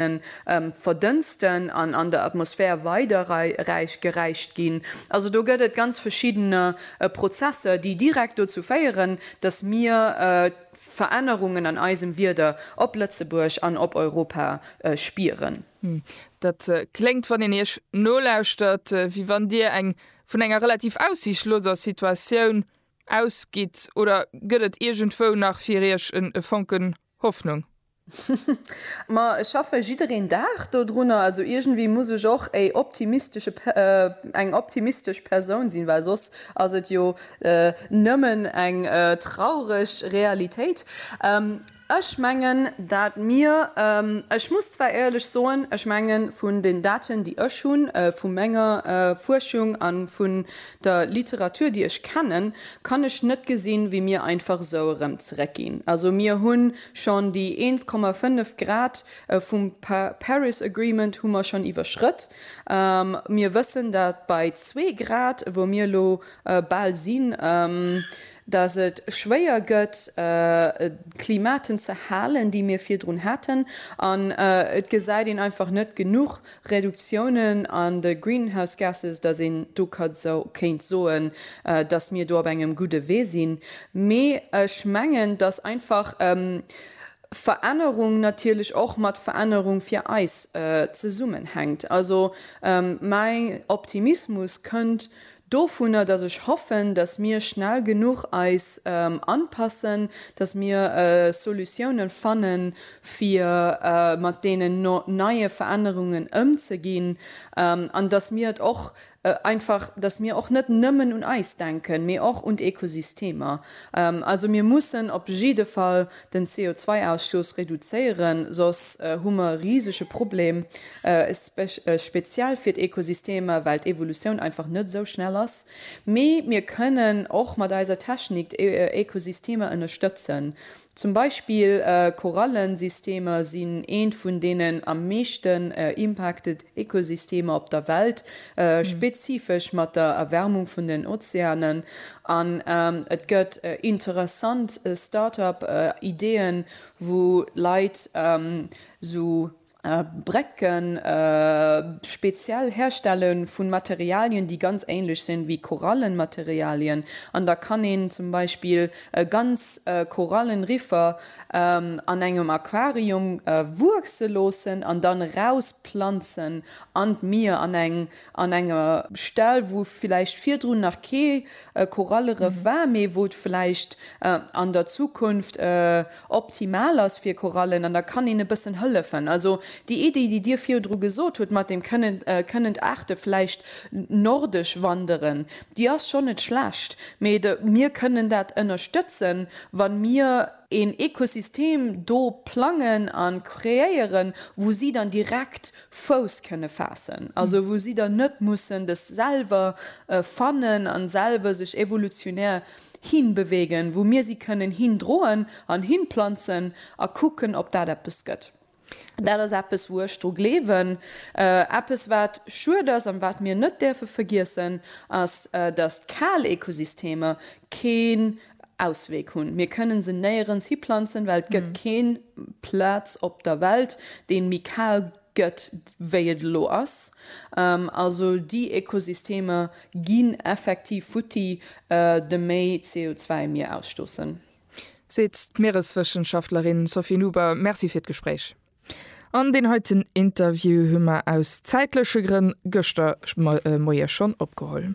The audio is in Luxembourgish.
verdënsten an an der Atmosphär weider geräicht ginn. Also do gëtt et ganz verschidden Prozesser, déi direkt dozou féieren, datt mir Verännerungen an eisem Wieder op Lëtzebuerg an op Europa spieren. Dat kléngt, wann een Iech nolauschtert, wéi wann Dir eng vun enger relativ aussiichtloser Situatioun ausgitt. Oder gëtt et iergendwou nach fir Iech e Fonken Hoffnung. Ma ech schaffe jiddereen Dag do drunner, also iergendwéi muss ech och éi optimistesche eng optimistesch Persoun sinn, well soss ass et jo nëmmen eng traureg Realitéit. Ech mengen, dat mir, ech muss zwar éierlech soen, ech mengen vun den Daten déi ech hunn vu menger Fuerschung an vun Der Literatur déi ech kennen, kann ech net gesinn wéi mir einfach sou erëm zeréck ginn. Also mir hu schonn déi 1,5 Grad vum Paris Agreement hu mer schonn iwwerschrëtt. Mir wëssen dat bei zwee Grad wou mir elo bal sinn, dat et schwéier gëtt d'Klimaten ze halen déi mir virdrun haten. An et gesäit een einfach net genuch Reduktiounen an de Greenhouse Gases, dass een do ka so kéint soen, dass mir do op engem gudde Wee sinn. Mee ech mengen, dass einfach Verännerung natierlech och mat Verännerung fir eis zesummenhänkt. Also mäi Optimismus kënnt dovunner, dass ech hoffen, dass mir schnell genuch eis anpassen, dass mir Solutiounen fannen, fir mat deenen neie Verännerungen ëmzeginn, an dass mir et och einfach, dass mir och net nëmmen un eis denken, mee och un d'Ekosystemer. Also mir mussen op jidde Fall den CO2-Ausstooss reduzéieren, soss hu mer e risege Problem, speziell fir d'Ekosystemer, well d'Evolutioun einfach net esou schnell ass. Mee mir kënnen och mat eiser Technik d'Ekosystemer ënnerstëtzen. Zum Beispill Korallensystemer sinn eent vun deenen am meeschten impacted Ekosystemer op der Welt, spezifesch mat der Erwärmung vun den Ozeanen. An et gëtt interessant Start-up-Ideeën, wou Leit esou Brécken speziell herstelle vu Materialien, déi ganz änlech sinn wéi Korallenmaterialien. An da kann een zum Beispill ganz Korallenriffer an engem Aquarium wuechse loossen an dann erausplanzen an d'Mier an eng an enger Stell wou villäicht virdrun nach kee Korallerëff war mee wou et villäicht an der Zukunft optimal ass fir Korallen an da kann een e bëssen hëllefen. Also déi Iddi déi Dir virdru gesot hutt mat deem kënnen kënnen d'Aarte villäicht nordesch wanderen, déi ass schonn net schlecht mee mir kënnen dat ënnerstëtzen Wa mir een Ekosystem do plangen a kreéieren, wou si dann direkt Fouss kënne faassen, also wou si dann net mussen des selwer fannen a selwer sech evolutionär hinbewegen, wou mir si kënnen hindroen an hinplanzen a kucken, ob dat eppes gëtt. Dat ass eppes, wou ech dru gleewen. Eppes, wat schued ass an wat mir net däerfe vergiessen, ass, datt d'Kal-Ekosystemer keen Ausweg hunn. Mir kënne se néierens hiplanzen, well et gëtt kee Plaz op der Welt, dee méi kal gëtt, wéi et elo ass. Also déi Ekosystemer ginn effektiv futti, de méi CO2 mir ausstoossen. seet d'Miereswëssenschaftlerin Sophie Nuber. Merci fir d'Gespréich. An deen heiten Interview hu mer aus zäitleche Grënn gëschter Moie schonn opgeholl.